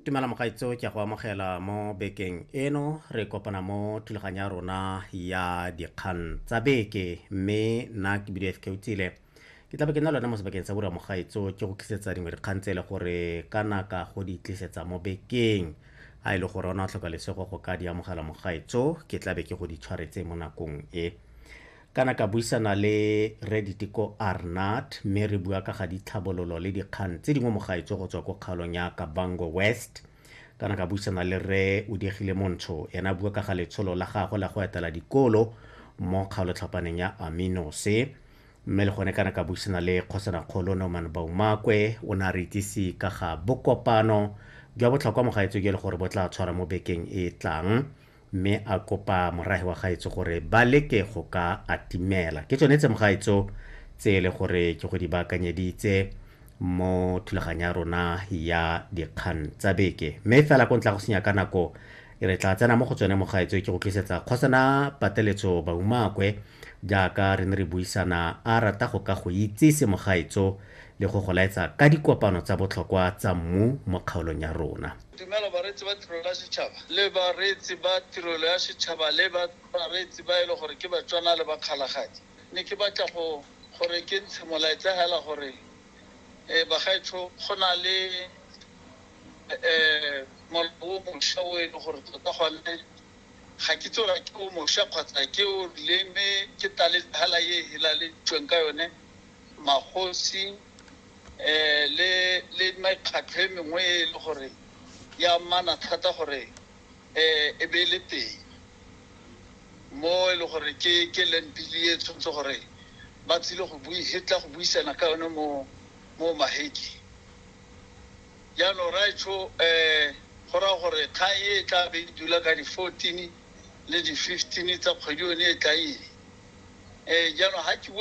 tumela mogaitso ke go amogela mo bekeng eno re kopana mo thulaganyo ya rona ya dikgang tsa beke mme nna ke bile fk utsile ke tlabe ke nna lone mo sebakeng sa bura mogaitso ke go tlisetsa dingwe dikgang tse e le gore ka naka go di tlisetsa mo bekeng a e le gore ona o tlhoka lesego go ka di amogela mogaitso ke tlabe ke go di tshwaretse mo nakong e Kana ka buisana le Rre Diteko Arnott mme re bua ka ga ditlhabololo le dikgang tse dingwe mo gaetsho go tswa ko kgaolong ya Kavango West. Kana ka buisana le Rre Udegile Montsho ene a bua ka ga letsholo la gagwe la go etela dikolo mo kgaolotlhapaneng ya Aminose. Mme le gone kana ka buisana le Kgosanakgolo Norman Baumakwe o ne a re itsise ka ga bokopano jwa botlhokwa mo gaetsho jo e le gore bo tla tshwara mo bekeng e e tlang. mme a kopa morage wa gaetso gore ba leke go ka atimela ke tsone tse mogaetso tse e le gore ke go di baakanyeditse mo thulaganyo ya rona ya dikgang tsa beke mme fela ko ntla go senya ka nako re tla tsena mo go tsone mogaetso ke go tlisetsa kgosana pateletso baumakwe jaaka re ne re buisana a rata go ka go itsise mogaetso le go go laetsa ka dikopano tsa botlhokwa tsa mmu mo kgaolong ya rona Tumelo, Bareetsi ba Tirelo ya Setšhaba le Bareetsi ba Tirelo ya Setšhaba le bareetsi ba e le gore ke Batswana le Bakgalagadi. Ne ke batla go gore ke ntshe molaetsa hela gore bagaetsho go na le molao o mosha o e le gore tota gone ga ke itse gore ke o mosha kgotsa ke o rileng mme ke taletsa hela e e helaleditsweng ka yone magosi um le mekgatlho e mengwe e le gore e amana thata gore um e be e le teng mo e le gore ke ke land bill e tshwanetse gore ba tsile go bui e tla go buisana ka yone mo mo maheke jaanong raetsho um go raya gore kgang e tla be e dula ka di-fourteen le di-fifteen tsa kgwedi yone e tla eng um jaanong ga ke bua